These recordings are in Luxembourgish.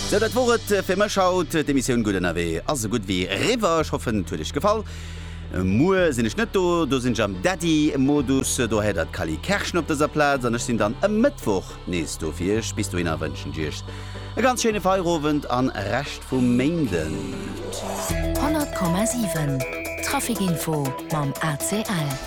Sou, dat wor et fir mech haut. D'Emissioun Gutt ënnerwee ass esou gutt wéi eriwwer. Ech hoffen, et huet Iech gefall. Muer sinn ech net do, do sinn ech am Daddy-Modus. Do héiert Der d'Cally Kerschen op dëser Plaz an ech sinn dann e Mëttwoch nees do fir Iech. Bis dohinner wënschen ech Iech e ganz schéine Feierowend a Rescht vu Méinden. 100,7 Trafic Info mam ACL.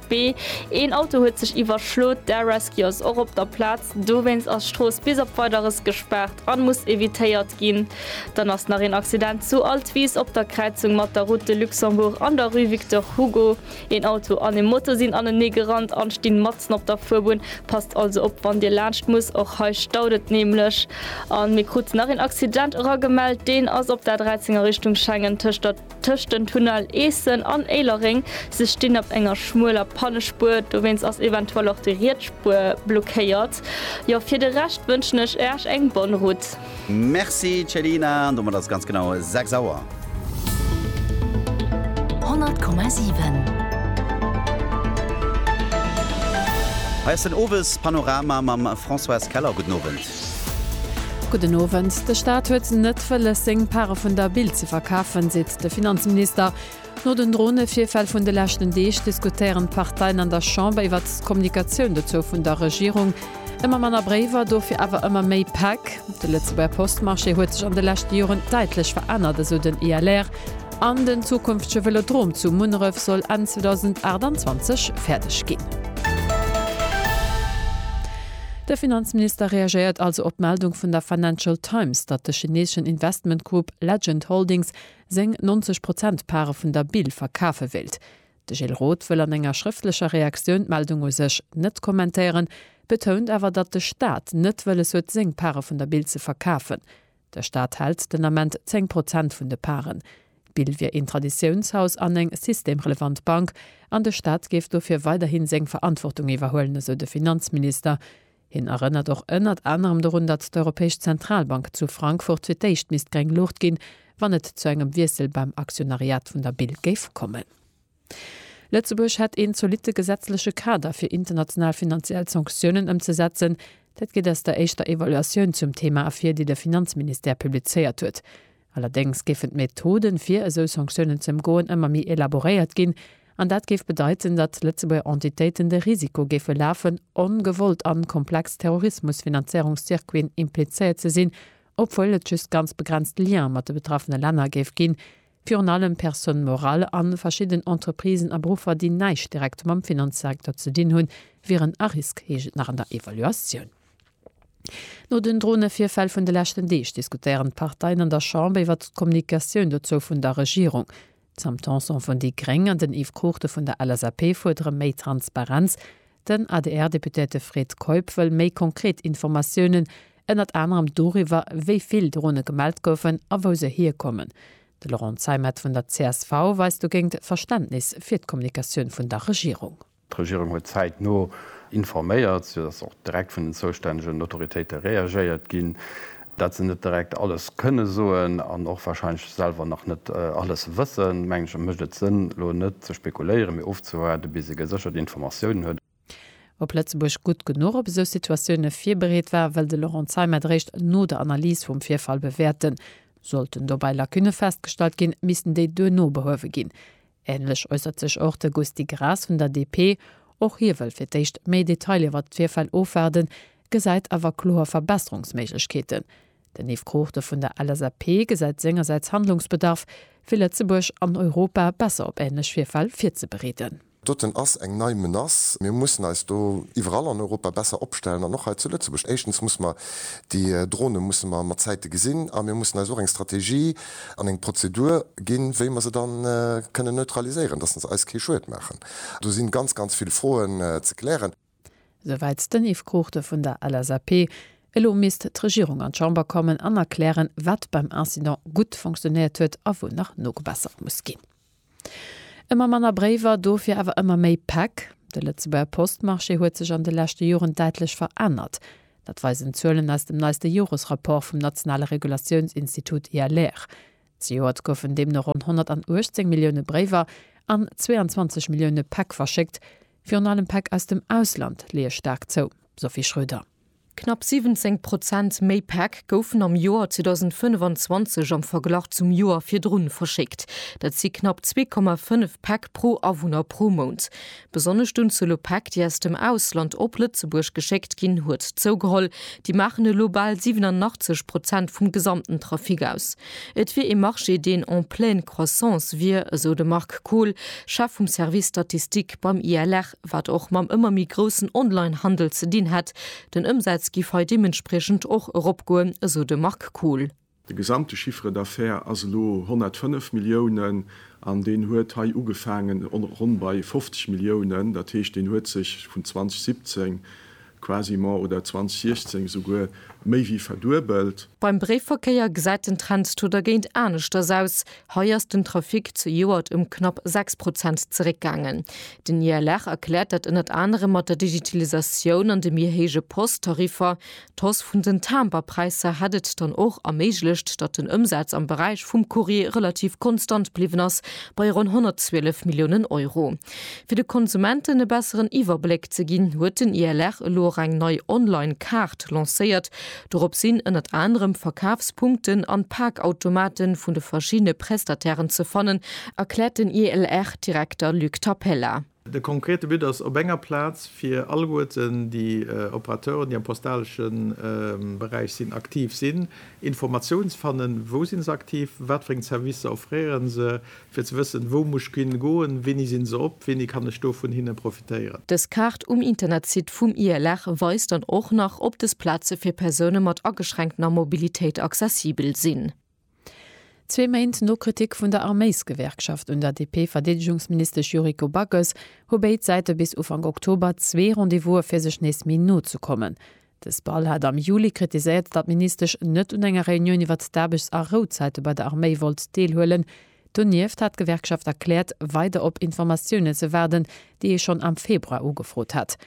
B, Een Auto huet sech iwwerschlot, d'Air Rescue ass och op der Plaz. Dowéinst ass d'Strooss bis op Weideres gespaart an muss evitéiert ginn. Dann ass nach een Accident zu Altwis op der Kräizung mat der Route de Luxembourg an der Rue Victor Hugo. Een Auto an ee Moto sinn anenee gerannt an stinn matzen op der Fuerbunn. Passt also op wann dir laanscht muss, och hei staut et nämlech. An mir kruten nach een Accident eragemellt, deen ass op der A13 a Richtung Schengen tëscht der. Tëscht den Tunnel Eessen an Éilereng si stinn op enger schmueler Pannespuer, dowéinst ass eventuell och déi riets Spuer blockéiert. Jo, fir de Rescht wënschen ech Äech eng bonne route. Merci Céline, an domat ass et ganz genau 6 Auer. 100,7. Hei ass den Owespanorama mam Françoise Keller. Gudden Owend. Gudden Owend. De Staat huet net wëlles, seng Pare vun der Bild ze verkafen, seet de Finanzminister. No den Dronevirfäll vun de leschten Deeg diskutéieren d'Parteien an der Chamber iwwert d'Kommunikatioun dozou vun der Regierung. Ëmmer manner Bréiwer, dofir awer ëmmer méi Päck. De Lëtzebuerger Postmarché huet sech an de leschte Joren däitlech verännert, esou den ILR. An den zukünftege Vëlodrom zu Munneref soll Enn 2028 fäerdeg ginn. De Finanzminister reagéiert also op d'Meldung vun der Financial Times, datt de chineeschen Investmentgrupp Legend Holdings seng 90 Prozent Pare vun der Bil verkafe wéilt. De Gilles Roth wëll an enger schrëftlecher Reaktioun d'Meldung u sech net kommentéieren, betount awer, datt de Staat net wëlles huet seng Pare vun der Bil ze verkafen. De Staat hält den Ament 10 Prozent vun de Paren. D'Bill wier een Traditiounshaus an eng systemrelevant Bank an de Staat géif dofir weiderhi seng Verantwortung iwwerhuelen, esou de Finanzminister. Hien erënnert och ënnert anerem dorun, datt d'Europäesch Zentralbank zu Frankfurt fir d'éischt misst gréng Luucht ginn, wann et zu engem Wiessel beim Aktionariat vun der Bill géif kommen. Lëtzebuerg hätt een zolitte gesetzleche Kader fir international finanziell Sanktiounen ëmzesetzen. Dat geet aus der éischter Evaluatioun zum Thema ervir, déi de Finanzministère publizéiert huet. Allerdéngs géifen d'Methoden, fir esou Sanktiounen ze ëmgoen, ëmmer méi elaboréiert ginn. An dat géif bedeiten, datt Lëtzebuerger Entitéiten de Risiko géife lafen, ongewollt an komplex Terrorismusfinanzéierungscircuiten implizéiert ze sinn, obwuel et just ganz begrenzt Liene mat de betraffene Länner géif ginn, Virun allem Personnes morales a verschidden Entreprisen a Beruffer, déi näischt direkt mam Finanzsektor ze dinn hunn, wieren a Risk, heescht et nach an der Evaluatioun. No den Dronevirfäll vun de leschten Deeg diskutéieren d'Parteien an der Chamber iwwert d'Kommunikatioun dozou vun der Regierung. D'Sam Tanson vun déi gréng an den Yves Cruchten vun der LSAP fuerdere méi Transparenz. Den ADR-Deputéierte Fred Keup wëll méi konkret Informatiounen, ënnert anerem doriwwer, wéi vill Drone gemellt goufen a wou se hierkommen. De Laurent Zeimet vun der csv weist dogéint Verständnis fir d'Kommunikatioun vun der Regierung. D'Regierung huet zäitno informéiert, sou datt och direkt vun den zoustännegen Autoritéite reagéiert ginn. Datt se net direkt alles kënne soen an och warscheinlech selwer nach net alles wëssen, mengen ech, mécht et Sënn elo net ze spekuléieren, mee ofzewaarden, bis ee geséchert Informatiounen huet. Ob Lëtzebuerg gutt genuch op esou Situatioune virbereet war, wëll de Laurent Zeimet eréischt no der Analys vum Virfall bewäerten. Sollten dobäi Lacunne festgestallt ginn, missten déi duerno behuewe ginn. Änlech äussert sech och de Gusty Graas vun der DP. Och hie wëll fir d'éischt méi Detailer iwwert d'Virfäll ofwaarden, gesäit awer kloer Verbesserungsméiglechkeeten. Den Yves Cruchten vun der LSAP gesäit sengersäits Handlungsbedarf, fir Lëtzebuerg an Europa besser op änlech Virfäll virzebereeden. Doten ass eng nei Menace. Mir mussen eis do iwwerall an Europa besser opstellen an och hei zu Lëtzebuerg. Éischtens musse mer déi Drone musse mer mat Zäite gesinn a mir mussen eis och eng Strategie an eng Prozedur ginn, wéi mer se da kënnen neutraliséieren, dass se eis kee Schued maachen. Do si ganz, ganz vill Froen ze klären. esou wäit den Yves Cruchten vun der LSAP. Elo misst d'Regierung an d'Chamber kommen an erklären, wat beim Incident gutt fonctionnéiert huet a wou nach nogebessert muss ginn. Ëmmer manner Bréiwer, dofir awer ëmmer méi Päck? De Lëtzebuerger Postmarché huet sech an de leschte Joren däitlech verännert. Dat weisen d'Zuelen aus dem neiste Joresrapport vum nationale Regulatiounsinstitut ILR. Zejoert goufen deemno ronn 118 Millioune Bréiwer an 22 Millioune Päck verschéckt. Virun allem Päck aus dem Ausland leeë staark zou, Sophie Schröder. Knapp 17 Prozent méi Päck goufen am Joer 2025 am Verglach zum Joer virdrun verschéckt. Dat si knapp 2,5 Päck pro Awunner pro Mount. Besonnesch d'Unzuel u Päck, déi aus dem Ausland op Lëtzebuerg geschéckt ginn, huet zougeholl. Déi maachen elo bal 87 Prozent vum gesamten Trafic aus. Et wier ee Marché, deen en pleine croissance wier, esou de Marc Kohl, Chef vum Service Statistique beim ILR, wat och mam ëmmer méi groussen Online-Handel ze dinn hätt. Den Ëmsaz giff hei deementspriechend och eropgoen, esou de Marc Kohl. De gesamte Chiffre d'affaires ass elo 105 Milliounen an deen huet hei ugefaangen ronn bei 50 Milliounen. Dat heescht, deen huet sech vun 2017 quasiment oder 2016 esouguer méi wéi verduebelt. Beim Bréifverkéier gesäit den Trend to dergéint aneschters aus. Hei ass den Trafic zejoert ëm knapp 6 Prozent zeréckgaangen. Den ILR erkläert dat ënnert anerem mat der Digitalisatioun an de méi héije Post-Tariffer. D'Hausse vun den Timberpräisser hätt et dann och erméiglecht, datt den Ëmsaz am Beräich vum Courrier relativ konstant bliwwen ass, bei ronn 112 Milliounen Euro. Fir de Konsumenten e besseren Iwwerbléck ze ginn, huet den ILR elo och eng nei Online-Kaart lancéiert. Dorop sinn ënnert anerem Verkafspunkten an Parkautomate vun de verschiddene Prestatairen ze fannen, erkläert den ILR-Direkter Luc Tapella. De konkrete But ass, op enger Plaz fir alleguerten déi Operateuren, déi am postalesche Beräich sinn, aktiv sinn, Informatioun ze fannen, wou si se aktiv, wat fir eng Servicer offréieren se, fir ze wëssen, wou muss ech hin goen, wéini sinn se op, wéini kann ech do vun hinne profitéieren. Dës Kaart um Internetsite vum ILR weist dann och nach, ob dës Plaze fir Persoune mat ageschränktener Mobilitéit accessibel sinn. Zwee Méint no Kritik vun der Arméisgewerkschaft un der DP-Verdeedegungsministesch Yuriko Backes hu béid Säite bis Ufank Oktober zwee Rendez-vouse fir sech nees méi no ze kommen. De SPAL hat am Juli kritiséiert, datt d'Ministesch net un enger Reunioun iwwert d'Aarbechts a Rouzäite bei der Arméi wollt deelhuelen. Donieft hat d'Gewerkschaft erkläert, weider op Informatiounen ze waarden, déi ee schonn am Februar ugefrot hat.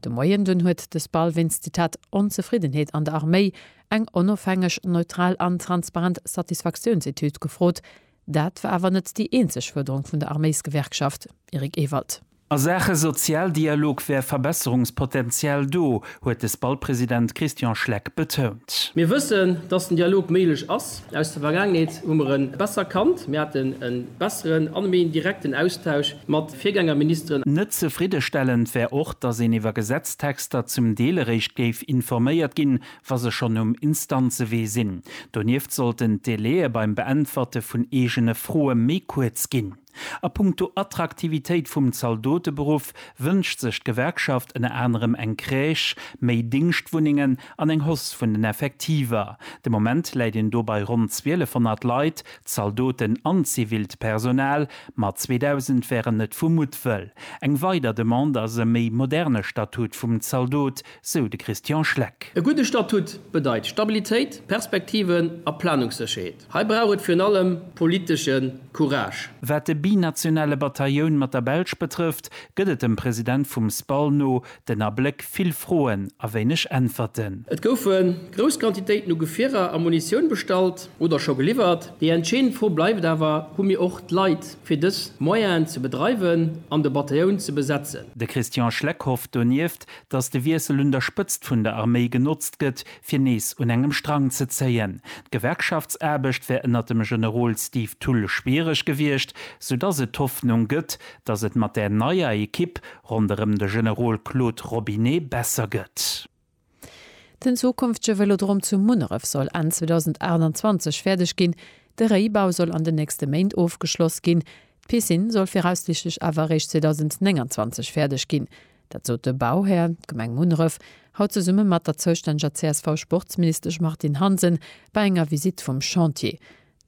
De Moien dunn huet de SPAL wéinst, Zitat, Onzefriddenheet an der Arméi eng onofhängeg, neutral an transparent Satisfaktiounsetüd gefrot. Dat war awer net déi eenzeg Fuerderung vun der Arméisgewerkschaft, Eric Ewald. A Saache Sozialdialog wär Verbesserungspotential do, huet de SPAL-President Christian Schleck betount. Mir wëssen, dass den Dialog méiglech ass. Aus der Vergaangenheet hu mer e besser kannt. Mir haten e besseren an e méi direkten Austausch mat Virgängerministeren. Net zefriddestellend wär och, datt een iwwer Gesetztexter zum Deel eréischt géif informéiert ginn, wa se schonn um Instanzewee sinn. Donieft sollten d'Délaië beim Beäntwerte vun eegene Froe méi kuerz ginn. A punkto Attraktivitéit vum Zaldoteberuff wënscht sech d'Gewerkschaft ënner anerem eng Crèche, méi Dingschtwunnengen an eng Hausse vun den Effektiver. De Moment läit een do bei ronn 1200 Leit, Zaldoten an zivilt Personal, mat 2.000 wären net vu Muttwëll. Eng weider Demande ass e méi moderne Statut vum Zaldot, sou de Christian Schleck. E gudde Statut bedeit Stabilitéit, Perspektiven a Planungssécherheet. Hei brauch et virun allem politesche Courage. Wat de binationale Batailloun mat der Belsch betrëfft, gëtt et dem President vum SPAL no Den Abléck, vill Froen a wéineg Äntwerten. Et goufe grouss Quantitéiten u Gefierer a Munitioun bestallt oder scho geliwwert. Déi entscheedend Fro bleift awer, Hu mir och d'Leit fir dës Moyenen ze bedreiwen an de Batailloun ze besetzen? De Christian Schleck hofft donieft, datt de Wiessel un der Spëtzt vun der Arméi genotzt gëtt, fir nees un engem Strang ze zéien. D'Gewerkschaftsaarbecht wär ënner dem Generol Steve Thull schwiereg gewiescht, soudatt et d'Hoffnung gëtt, datt et mat där neier Ekipp Ronderëm de Generol Claude Robinet besser gëtt. Den zukünftege Vëlodrom zu Munneref soll Enn 2028 fäerdeg ginn. De Réibau soll an den nächste Méint ofgeschloss ginn. D'Piscine soll viraussiichtlech awer eréischt 2029 fäerdeg ginn. Dat sot de Bauhär, d'Gemeng Munneref, haut zesumme mat der zoustänneger CSV-Sportsministesch Martine Hansen bei enger Visitt vum Chantier.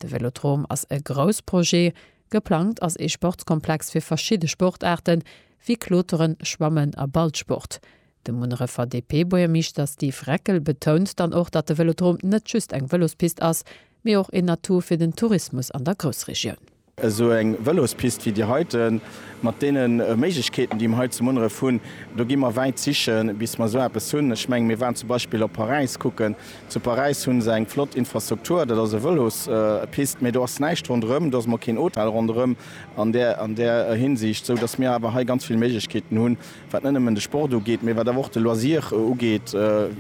De Vëlodrom ass e Groussprojet. Geplangt ass ee Sportskomplex fir verschidde Sportaarte wéi Kloteren, Schwammen a Ballsport. De Munnerefer DP-Buergermeeschter Steve Reckel betount dann och, datt de Vëlodrom net just eng Vëlospist ass, mee och een Atout fir den Tourismus an der Groussregioun. Esou eng Vëlospist wéi déi heite mat deene Méiglechkeeten, déi mer hei zu Munneref hunn, do gi mer wäit sichen, bis mer esou eppes hunn. Ech mengen, mir waren zum Beispill op Paräis kucken, Zu Paräis hu se eng flott Infrastruktur, dat ass e Vëlospist, mee do ass näischt ronderëm, do ass emol keen Hotel ronderëm an där an där Hinsicht, sou datt mir awer hei ganz vill Méiglechkeeten hunn, wat net nëmmen de Sport ugeet, mee wat awer och de Loisir ugeet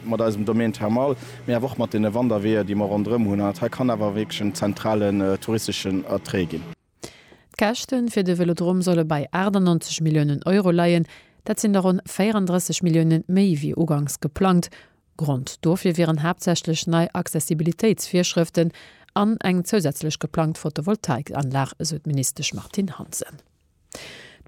mat eisem Domaine thermal, mee awer och mat deene Wanderweeër, déi mer ronderëm hunn. An dat hei kann awer wierklech en zentralen touristeschen Attrait ginn. D'Käschte fir de Vélodrom solle bei 98 Milliounen Euro leien. Dat sinn der ronn 34 Millioune méi wéi ugangs geplangt. Grond dofir wieren haaptsächlech nei Accessibilitéitsvirschrëften an eng zousätzlech geplangt Photovoltaikanlag, esou d'Ministesch Martine Hansen.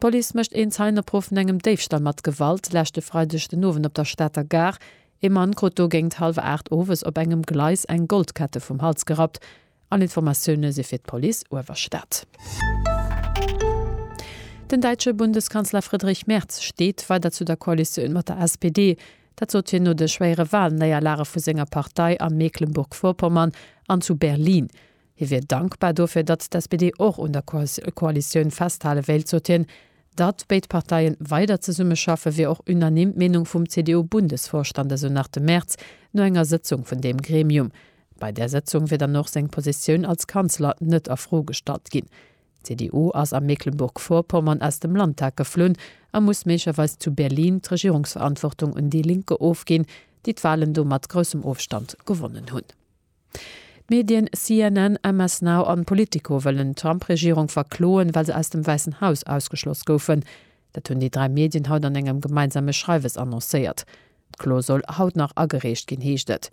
D'Police mécht een Zeienopruff vun engem Déifstall mat Gewalt leschte Freideg den Owend op der Stater Gare. Ee Mann krut do géingt hallwer 8 owes op engem Gleis eng Goldkette vum Hals gerappt. All Informatioune si fir d'Police Uewerstad. Den däitsche Bundeskanzler Friedrich Merz steet weider zu der Koalitioun mat der SPD. Dat sot hien no de schwéiere Walnéierlage vu senger Partei a Mecklenburg-Vorpommern an zu Berlin. Hie wier dankbar dofir, datt d'SPD och un der Koalitioun festhale wéilt, sot hien. Datt béid Parteie weider zesummeschaffe wier och unanime d'Meenung vum CDU-Bundesvorstand, esou nach de Merz no enger Sëtzung vun deem Gremium. Bei där Sëtzung wier dann och seng Positioun als Kanzler net a Fro gestallt ginn. D'CDU ass a Mecklenburg-Vorpommern aus dem Landtag geflunn a muss méiglerweis zu Berlin d'Regierungsverantwortung un déi Linke ofginn, déi d'Walen do mat groussem Ofstand gewonnen hunn. D'Medien CNN, MS Now an Politico wëllen d'Trump-Regierung verkloen, well se aus dem Wäissen Haus ausgeschloss goufen. Dat hunn déi dräi Medien haut an engem gemeinsame Schreiwes annoncéiert. D'Klo soll haut nach agereecht ginn, heescht et.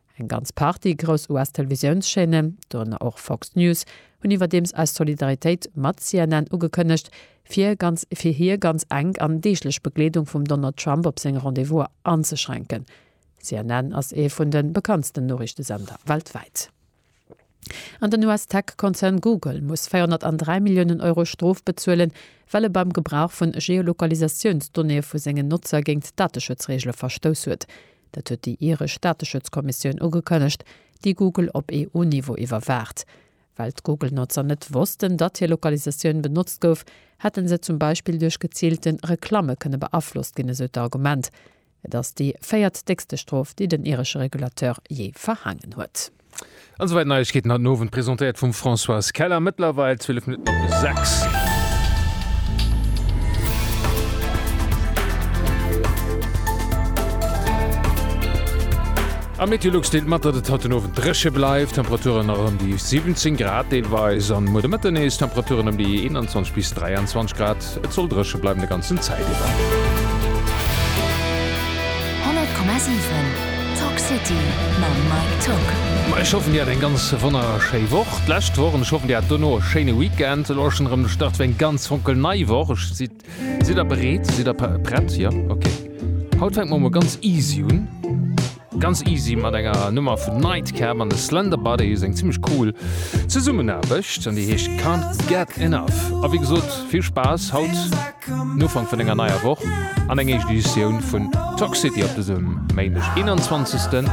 Eng ganz Partie grouss US-Televisiounschaîne, dorënner och Fox News, hunn iwwerdeems eis Solidaritéit mat CNN ugekënnegt, fir ganz fir hir ganz enk an deeglech Begleedung vum Donald Trump op seng Rendez-vouser anzeschränken. CNN ass ee vun de bekanntsten Noriichtesender weltwäit. An den US-Tech-Konzern Google muss 403 Milliounen Euro Strof bezuelen, well e beim Gebrauch vu Geolokalisatiounsdonnéeë vu sengen Notzer géint d'Dateschutzreegele verstouss huet. Dat huet déi iresch Dateschutzkommissioun ugekënnegt, déi Google op EU-Niveau iwwerwaacht. Well d'Google-Notzer net wossten, datt hir Lokalisatioun benotzt gouf, hätte se zum Beispill duerch geziilte Reklamme kënne beaflosst ginn, esou d'Argument. Et ass déi véiert déckste Strof, déi den iresche Regulateur jee verhaangen huet. An esou weit Neiegkeeten haut den Owend, presentéiert vum Françoise Keller. Mëttlerweil 12 Minutten op de 6. Am Meteolux deelt mat, datt et haut den Owend dréche bleift, Temperaturen nach ëm déi 17 Grad deelweis, an muer de Mëtten nees Temperaturen ëm déi 21 bis 23 Grad. Et soll drëche bleiwen de ganzen Zäit iwwer. Ech hoffen dir hat eng ganz wonnerschéi Woch d'lescht Woch an ech hoffen dir hat dono e schéine Weekend. Elo ass schonn erëm de Start fir eng ganz fonkel nei Woch. Ech si sidd der bereet? Sidd der prett? Jo? Ok. Haut fänke mer emol ganz easy un. Ganz easy mat enger Nummer vun Nightcap an de Slender Buddies, eng zimmlech cool Zesummenaarbecht an déi heescht Can't Get Enough. A wéi gesot, vill Spaass haut den Ufank vun enger neier Woch an eng éischt Editioun vun Toxcity op dësem Méindeg, 21. September.